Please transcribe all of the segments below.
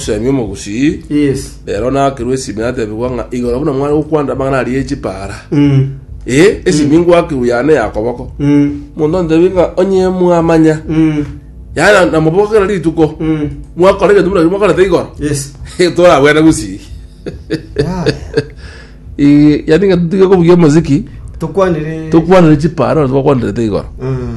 Omoseemi omogusii Yes. ero nakerwe esimi natebigwa ng'a igoro buna mware gokwanda amang'ana aria ye chipaara Mm. ee esimi ngwakirwe yane ya koboko Mm. omonto antebi ng'a onye mwamanya Mm. yana namobokera rituko Mm. mwakora egento buna ekero mwakorete igoro Yes. toragwene gusii Yeah. Ii, yaani ng'a tutige kobugia omoziki Tukwanire. tokwanire chipaara ore twakwanirete igoro Mm.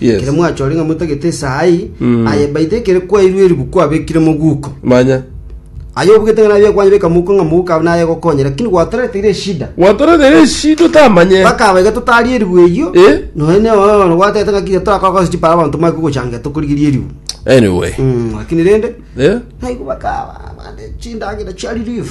Yes. ekere mwachore ng'a motagete esaa eye Mm. aye baita ekere kwairwe eribu kwabekire moguko manya aye obugete ng'a nabe kwanye beka moguko ng'a moguko abe naye gokonye lakini gwatoreteire eshida gwatoretere eshida otamanye bakaba iga totarie eribu eyio Eh? noe neoyono gwatete ng'a kinya torakora gose chipara abanto mare kogochangia tokorigeria eribu anyway Mm, lakini rende eh? naigo bakaba bande chindagera chia relief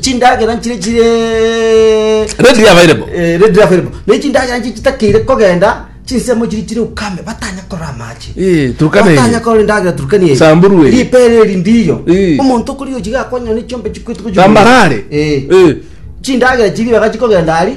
chindagera nchire chire Readily available. Eh, readily available ne chindagera nchi chitakeire kogenda chinsemo chiri chire ukame batanya korora amache Eh, Turkana eye. batanya korora indagera turkani eye. Samburu eye. ripere eri ndiyo Eh. omonto okori ochiga akonya ne chiombe chikwetu Tambarare. Eh. chindagera chiri baga chikogenda ari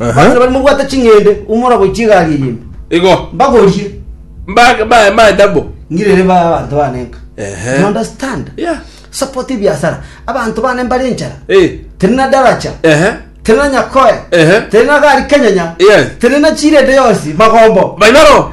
Abachenu baria mobwate ching'ende, umora goichia egari eye imbe. Igo. Mbagorie. Mba- mba- mba- double. Ngirere ba abanto bane nka. Ehe. You understand? Yeah. Support ebiasara. Abanto bane mbare enchara. Eh. Teri na daracha. Ehe. Teri na nyakoe. Ehe. Teri na gari kenyenya. Yes. Teri na chirende yonsi. Magombo. Baibaro.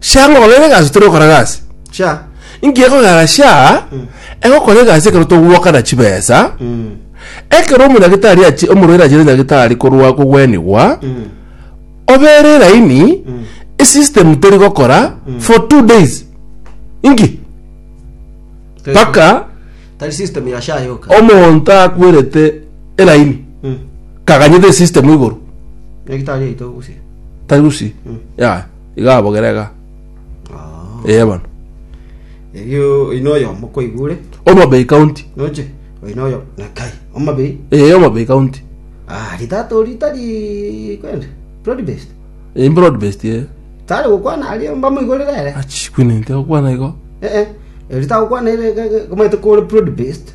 Shia ngokora ere egasi otari gokora gasi. Shia. Inki ekogera shia egokora egasi ekero togwokana chibesa? Ekero omonyagitari achi- omorwaire achire nyagitari korwa kogwenigwa, obe ere eraini, esystem teri gokora for two days. Inki? Mpaka Tari system ya sha yoka. omonto akwerete eraini Mm. kaganyete esystem igoro Nyagitari aito gusia. tari gusi ya Iga abogere iga. Ah. Ee bono. Erio oino oyomo koigure. Omabei county. Noche. Oino oyo nakai. Omabei. Ee Omabei county. Ah, ritato ritari kwende. Broad based. Ee broad based ee. Tare gokwana ari mbamo igore rere. Achi kwinente gokwana igo. Eh eh. Ritago kwana ere komete kore broad based.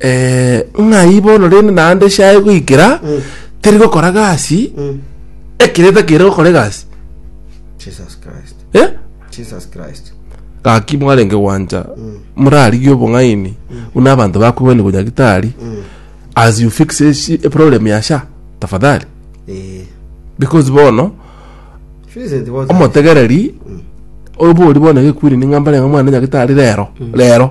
eh, ng'ai bono rende naende esyaye goikera teri gokora gasi ekereta kere gokora egasi Jesus Christ. eh? Jesus Christ. gaki mwarenge gwancha murarigie obong'aini buna abanto bakwegwani gonya gitari as you fix esi- a problem ya sha tafadhali Eh. because bono Vincent was omotegereri obori bono gekwiri ning'ambare ng'a mwana nyagitari rero rero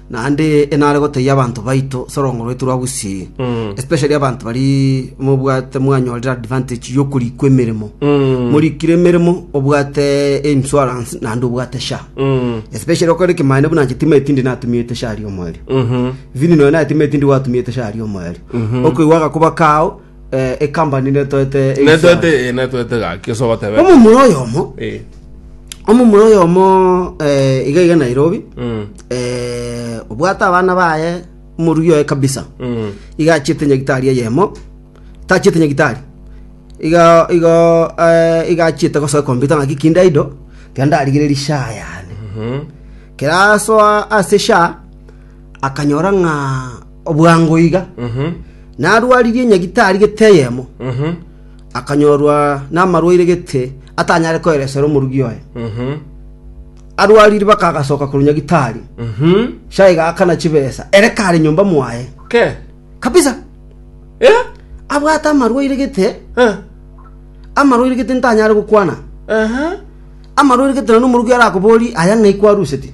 Naende enare gotebia abanto baito ase orong'o rwaito rwa gusii, especially abanto baria mobwate mwanyorire advantage y'okorikwa emeremo. Morikire emeremo obwate insurance naende obwate SHA. Especially okore ekemanyereria buna inche timaeti tindi natumiete SHA riomwerio. Vini nonya naye timaeti tindi gwatumiete SHA riomwerio. Okoigwa agakuba kao Eh, ekambani netoete eisara. netoete eh, netoete gaki ase ogotebeka omomura oyomo Eh, omomura oyomo eh, iga iga nairobi mm, eh, obwate abana baye omorugi oye kabisa mm, iga achiete nyagitari eyemo tachiete nyagitari iga iga eh, iga achiete gosoa kompyuta ng'aki kinde aido iga ndarigire rishaa yane mhm. kerasoa ase sha akanyora ng'a Obwango iga narwaririe nyagitari gete eyemo, akanyorwa namarwaire gete atanyare koeresera omorugi oye. Arwarire bakagasoka korwa nyagitari, chai gakana chibesa, ere kare nyomba mwaye kabisa. Abwate amarwaire gete, amarwaire gete ntanyare gokwana, amarwaire gete nonya omorugi arakoborie, aya ng'ai kwarusetie?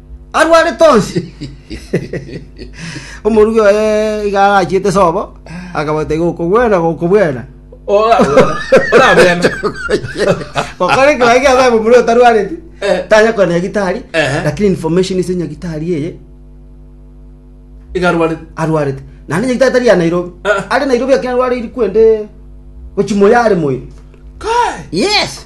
arwarete onsi. Omorugi oye iga arachiete sobo, akabaita iga okobwena gokobwena. Ora- ora- orabwene. Gokora ekero age abaye omomura otarwareti, Eh. tanya kona nyagitari, Ehe. lakini information ase nyagitari eye Iga arwarete. arwarete. Naende nyagitari tari ya Nairobi. Ah. Are Nairobi akina arwarire kwende gochimoya are moyo. Kai! Yes.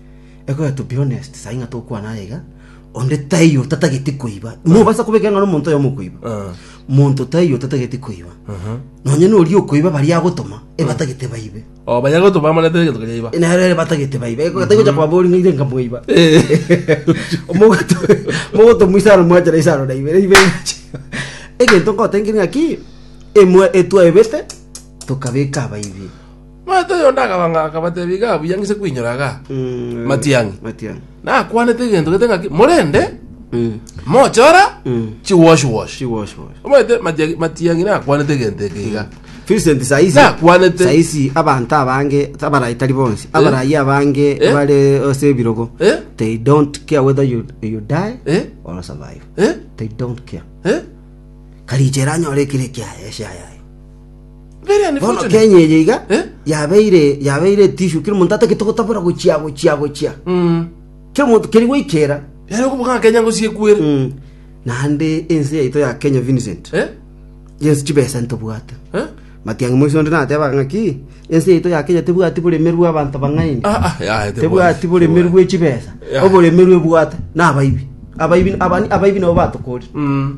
Ekero to be honest sai ng'a tokwana aye iga onde taiyo otatageti koiba mobasa kobeka ng'a nomonto oyomo okoiba Ah. monto taiyo otatageti koiba Aha. nonye noria okoiba baria agotoma ebatagete baibe Oh, bayago to bamana tere geto kajaiba. nere batagete baibe ekataigocha kwabori ng'a ire nkamoiba Eh. mogotomwa isano mwachera isano na ibere ibere egento ngotenki ng'aki emwe etwaebete tokabeka abaibi Omanyete oyonde akabanga, akabatebia, Iga buya ngise koinyora iga, matiang'i. Matiang'i. Nakwanete egento gete ng'aki, morende mochora chiwashwash. Chiwashwash. Omanyete Matiang'i- matiang'i nakwanete egento eke iga. Vincent saisi Nakwanete. saisi abanto abange abarai tari bonsi abarai abange Eh? bare ase ebirogo Eh? they don't care whether you, you die Eh? or survive Eh? they don't care Eh? karicha eranyore ekire kiaye eshayaye Bono Kenya eye iga Eh? yabeire yabeire etishu kera omonto atagete gotabora gochia gochia gochia kera omonto keri goikera Yari okubuga Kenya ngosie kwere. Mm. naende ense yaito ya Kenya Vincent Eh? yensi chibesa ntobwate Eh? matiang'i moiso onde nateba ng'aki ense yaito ya Kenya tebwati boremerwe abanto bang'aini Ah, ah, ya, tebwati. tebwati boremerwe bwe chibesa Ya. oboremerwe bwate nabaibi abaibi abani abaibi nabo batokorire Mm.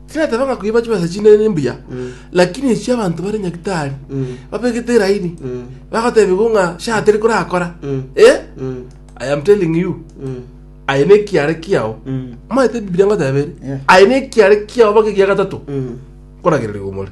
Tinatebanga koiba chibesa chinde nimbuya, lakini echia abanto bare Nyagitari babegete eraini, bagotebigwa ng'a sha teri korakora. Eh? I am telling you, aye nekiare kiao. Maete Bibilia ngotebere, Yes. aye nekiare kiao baka egia gatato koragererigwa omore.